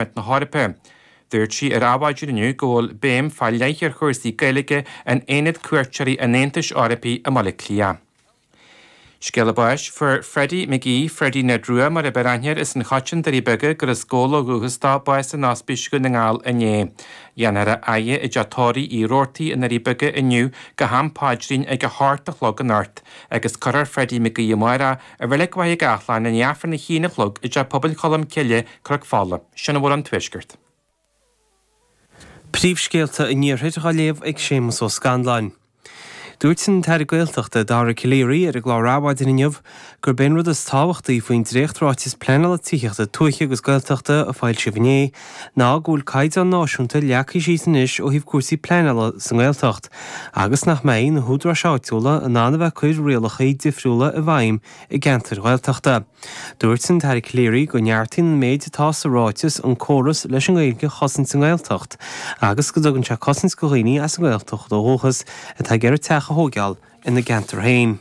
Pharlaimint na hEorpa. Dúirt sí ar Adhmhaidin inniu go bhfuil béim fá leith ar chúrsaí Gaeilge in Aonad Cuairteoirí an Aontais Eorpaigh i mBaile Átha Cliath. Scéala báis fuair Freddie McGee, Freddie Ned Rua mar ab fhearr aithne air as an Choiteann, Doirí Beaga, gur as Gabhla ó dhúchas dó, bás in Ospís Dhún na nGall inné. Dhéanfar é a fhaire i dteach tórraimh Uí Rabhartaigh i nDoirí Beaga inniu go ham paidrín ag a hocht a chlog anocht agus cuirfear Freddie McGee amárach i reilig Mhachaire Gathlán i ndiaidh Aifreann a haon a chlog i dteach pobail Cholm Cille Cnoc Fola, sin a bhfuil ón Tuaisceart. Príomhscéalta an Iarthair dhá léamh ag Séamus Ó Scanláin. Dúirt an tAire Gaeltachta, Dara Calleary, ar an gclár Adhmhaidin inniu gurb é an rud is tábhachtaí faoin dréacht-Ráiteas Pleanála Tithíochta Tuaithe agus Gaeltachta a foilsíodh inné ná go bhfuil caighdeán náisiúnta leagtha síos anois ó thaobh cúrsaí pleanála sa nGaeltacht agus nach mbeidh na húdaráis áitiúla in ann a bheith ag cur rialacha difriúla i bhfeidhm i gceantair Ghaeltachta. Dúirt an tAire Calleary go neartaíonn an méid atá sa ráiteas an córas leis an nGaeilge a chosaint sa nGaeltacht agus go dtugann sé cosaint go dhaoine as an nGaeltacht ó dhúchas atá ag iarraidh teach a thóigeáil ina gceantar féin.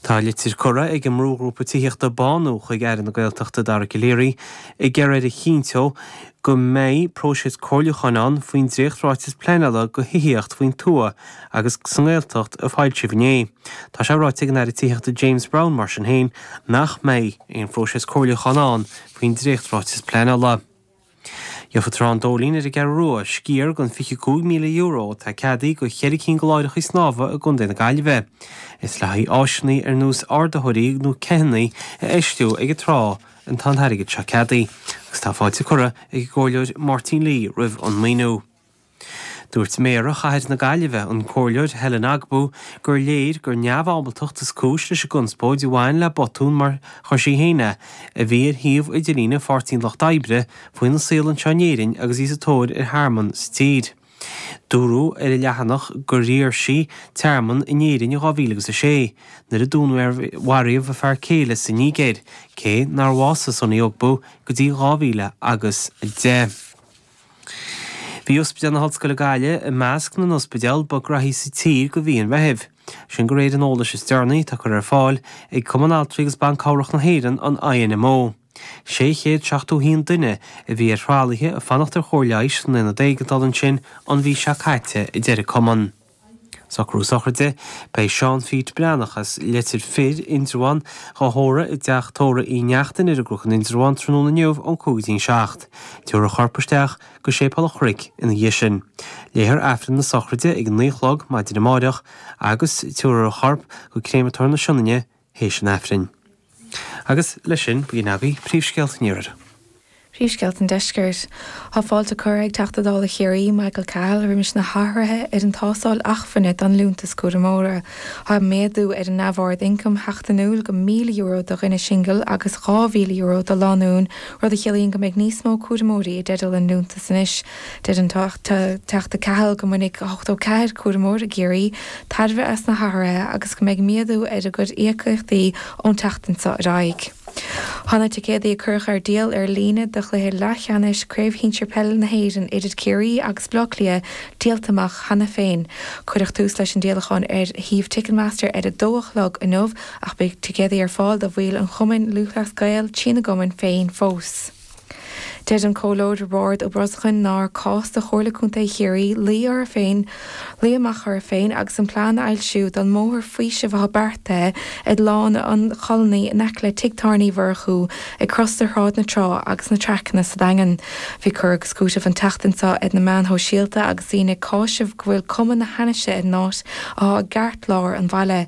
Tá litir curtha ag an mbrúghrúpa tithíochta Bánú chuig Aire na Gaeltachta, Dara Calleary, ag iarraidh air a chinntiú go mbeidh próiseas comhairliúcháin ann faoin dréacht-ráiteas pleanála go thithíocht faoin tuath agus sa nGaeltacht a foilsíodh inné. Tá sé ráite ag an Aire Tithíochta James Browne mar sin féin nach mbeidh aon phróiseas comhairliúcháin ann faoin dréacht-ráiteas pleanála. Gheobhaidh Trá an Dóilín ar an gCeathrú Rua, sciar den €25,000 atá ceadaithe do cheithre cinn de láithreachaí snámha i gContae na Gaillimhe. Is le haghaidh áiseanna ar nós ardaitheoirí nó ceathannaí a fheistiú ag an trá atá an t-airgead seo ceadaithe agus tá fáilte curtha ag an gComhairleoir Máirtín Lee roimh an maoiniú. Dúirt Méara Chathair na Gaillimhe, an Comhairleoir Helen Ogbu, gur léir gur neamhábaltacht is cúis leis an gconspóid a bhain le botún mar a chuir sí féin é, a bhí ar shuíomh idirlíne Pháirtí an Lucht Oibre faoina saol anseo in Éirinn agus í sa tóir ar thearmann sa tír. Dúradh ar an leathanach gur iarr sí tearmann in Éirinn in 2006 nuair a dúnmharaíodh a fear céile sa Nígéir, cé nár bhásaigh Sunny Ogbu go dtí 2010. Bhí Ospidéal na hOllscoile Gaillimh i measc na n-ospidéal ba graithí sa tír go mhí an Mheithimh. Sin go réir an eolais is deireanaí atá curtha ar fáil ag Cumann Altraí agus Ban Cabhrach na hÉireann, an INMO. 671 duine a bhí ar thralaithe ag fanacht ar chóir leighis san Aonad Éigeandála ansin an mhí seo caite, a deir an cumann. Socrú sochraide, beidh Seán Pheait Breathnach as Leitir Fir, Indreabhán, dhá thórramh i dTeach Tórraimh Uí Neachtain ar an gCnoc in Indreabhán tráthnóna inniu ón 5-7. Tabharfar a chorp isteach go Séipéal an Chnoic ina dhiaidh sin. Léifear Aifreann na Sochraide ag 9 a chlog maidin amáireach agus tabharfar a chorp go Créamatóir na Sionainne théis an Aifrinn. Agus leis sin, b'in agaibh príomhscéalta an Iarthair. Príomhscéalta an Deiscirt. Tá fáilte curtha ag Teachta Dála Chiarraí, Michael Cahill, roimis na hathruithe ar an tástáil achmhainne don Liúntas Cúramóra. Tá méadú ar an neamhaird ioncaim sheachtainiúil go €1,000 do dhuine singil agus €2,000 do lánúin, rud a chiallaíonn go mbeidh níos mó cúramóirí i dteideal an liúntas anois. Deir an Teachta Cahill go mbainfidh 84 cúramóir i gCiarraí tairbhe as na hathruithe agus go mbeidh méadú ar a gcuid íocaíochtaí ón tseachtain seo ar aghaidh. Tá na ticéadaí a cuireadh ar díol ar líne do chluiche leathcheannais Craobh Shinsir Peile na hÉireann idir Ciarraí agus Baile Átha Cliath díolta amach cheana féin. Cuireadh tús leis an díolachán ar shuíomh Ticketmaster ar a dó a chlog inniu ach beidh ticéadaí ar fáil do bhaill an Chumainn Lúthchleas Gael trína gcumann féin fós. Deir an Comhairleoir Roibeárd Ó Brosnacháin nár cás do Chomhairle Contae Chiarraí luí orthu féin, luí amach orthu féin agus an plean a fhoilsiú don mbóthar faoisimh atá beartaithe ag Lána an Cholony in aice le Tigh Tábhairne Uí Mhurchú ag crois do Shráid na Trá agus na Traiceanna sa Daingean. Bhí cur agus cúiteamh an tseachtain seo ar na meáin shóisialta agus daoine ag cáiseamh go bhfuil cuma na hainnise ar an áit atá i gceartlár an bhaile.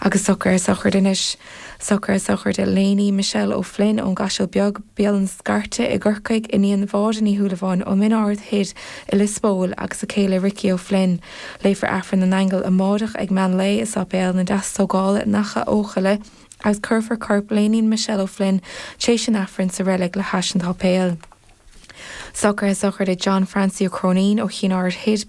Agus socrú sochraide anois. Socrú sochraide Léiní Michelle O'Flynn ón gCaiseal Beag, Béal na Scairte i gCorcaigh, iníon Mháire Ní Shúilleabháin ó Min Aird Thoir i Lios Póil agus a céile Ricí O'Flynn. Léifear Aifreann na nAingeal amáireach ag mean lae i Sáipéal na Deastógála in Achadh Eochaille agus cuirfear corp Léiní Michelle O'Flynn tréis an Aifrinn sa reilig le hais an tsáipéil. Socrú sochraide John Francie Ó Cróinín ó Chinn Aird Thoir,